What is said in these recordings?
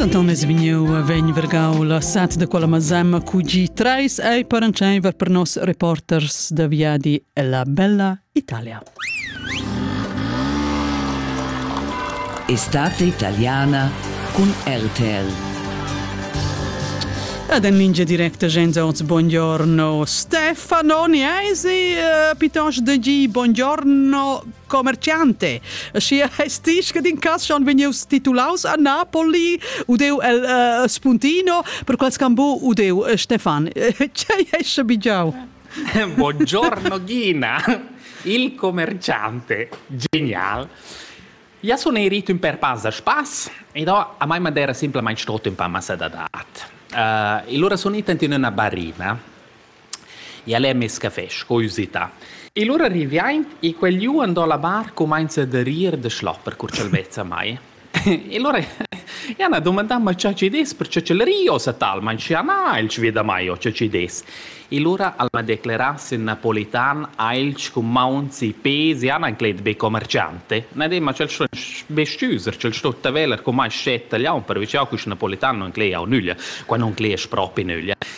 Denton es vegniu vegn vergau la sat da quella mazemma QG 3 ei per entscheiver per nos reporters da viadi ella bella Italia. Estate italiana con RTL. Ed en lingia directa gens oz, buongiorno Stefano, ni eisi uh, piuttosto da gi buongiorno commerciante. Schi es dich che din cas schon vegnius titulaus a Napoli, udeu el uh, Spuntino, per quals cambu udeu uh, Stefan. Cei esce bigiau? Buongiorno Gina, il commerciante. Genial. Ja sun ei rit ün per pas da spass ed ho a mai madera simplamaing stot ün pa massa da dat. Uh, e lura sun ita in üna barina El è mess café sco usità. E lura riviaint e quel liù andò la bar cumainza da rir da schlopper cur ch'el vezza mai. E lura ja na dumandà ma cha chi dess perche ch'el rio sa talmain schi na il sveda mai o cha chi dess. E lura al m'ha declerà sin napolitan ailch cun mauns e pes, ja n'han clet be commerciante. Na dem ma ch'el sto be stüser, ch'el sto taveler cumai schet tagliaun, perche cha quist napolitan non cleia o nüglia, qua non cleasch propi nüglia.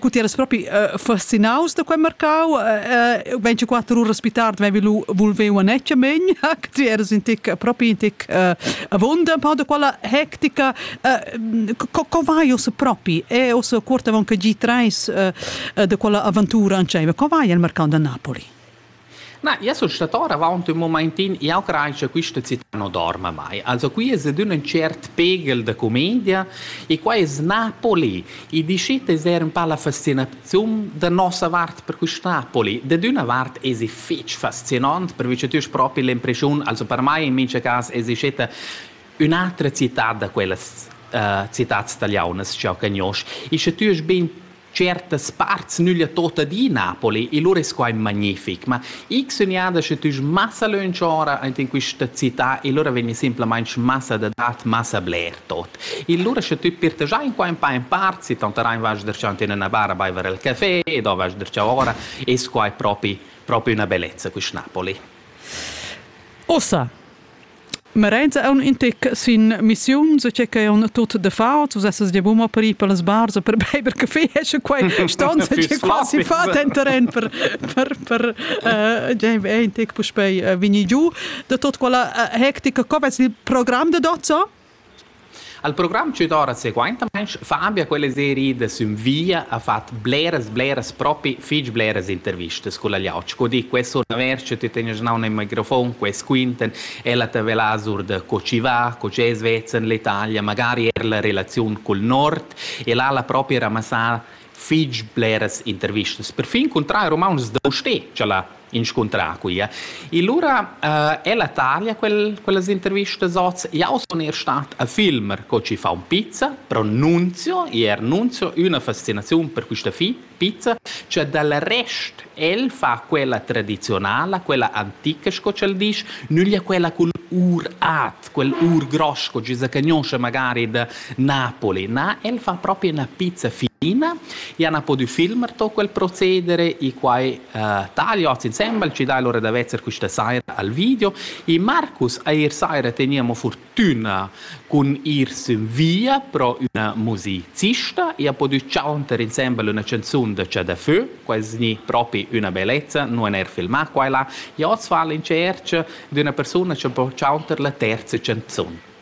Cu ti eras propi uh, fascinaus da quei marcau, uh, uh, 24 uras più tardi avevi lu volveu a necciamen, ti eras in tic, propi in tic uh, avonda, un po' da quella hectica. Uh, co, co vai ossa propi? E ossa cuort avon che gi treis uh, de quella avventura ancei, ma co vai al marcau da Napoli? Ma ia sun stat or avaunt ün mumaintin, jau crai cha quista cità nu dorma mai. Also qui es ed ün tschert pegl da cumedia e qua es Napoli. I dischet d'esser ün pa la fascinaziun da nossa vart per quist Napoli. Dad üna vart esi fich fascinant, perche tü hast propi l'impreschiun, also per mai in mincha cas esi steta ün'atra cità da quellas uh, citats tagliaunas ch'jau cagnosch. E sche tü hast bin certas parts nüglia tot adina poli e lur es quai magnific, ma ich sun jada sche tüs massa lönch ora aint in quista città e lura vegni simplamaing massa da dat, massa bler tot. E lura sche tü pirtagiai in qua in pa in part, si tanterai vas der già in üna bar a baiver il café e do vas der già ora, es quai propi propi üna bellezza quist Napoli. Ossa, Marenza è un intic sin missiun, so che è un tut de fart, so sesses de buma per ir per les bars per beber caffè, esce quai stanza che quasi fa den terren per per per uh, intic puspei uh, vini giu de tot quella uh, hectica, co vets il program de dozza? Al program tutora seguaintamaing fa Ambia quella seria da sün via ha fat bleras bleras propi fich bleras intervistas culla Liauc. Cu di, quest sur da vers che ti tegnas naun in microfon, quest quinten, ella te vela sur da co ci va, co ci es vezza in l'Italia, magari er la relaziun cul nord e là l'ha propi ramassà fich bleras intervistas. Perfin cuntrari rumauntschs da usté, cha l'ha inscuntrà quia. E lura uh, è la taglia quel, quellas intervistas oz. Jau sun er stat a filmer co ci fa un pizza, pronunzio e annunzio una fascinazione per questa fi- pizza, cioè dal rest el fa quella tradizionala, quella antica, sco c'el dice, nüglia quella con ur at, quel ur gross che ci si conosce magari da Napoli, na, el fa proprio una pizza fina e ha potuto filmare tutto quel procedere e qua Tagli oz insembel ci dai l'ora da vezzer quista saira al video. I Marcus eir saira teniamo fortüna cun ir sün via pro üna musicista e ha podü chanter insembel üna canzun da Chà da Fö, quais gni propi üna bellezza, nu han eir filmà qua e là. E hoz fa'l in tscherch d'üna persuna cha po chanter la terza canzun.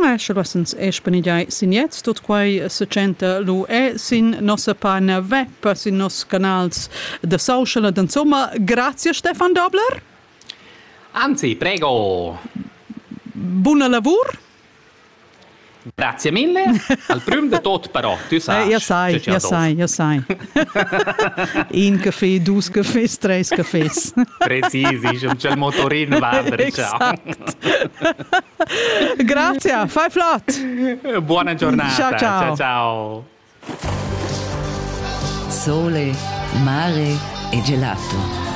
Sche lessens e spenigiai sin jet, tut quai se tschenta lu e sin nossa pagina web, sin nos canals de social ed insomma, grazie Stefan Dobler. Anzi, prego. Buona lavur. Grazie mille. Al prüm de tot però, tu sai. Eh, ja sai, ja sai, ja sai. In café, dus cafés, treis cafés. Präzisi, il motorin Esatto. Grazie, fai flott. Buona giornata. Ciao, ciao. ciao, ciao. Sole, mare e gelato.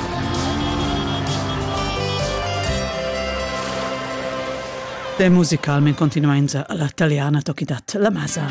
De musical men continuainza alla italiana toki dat la masa.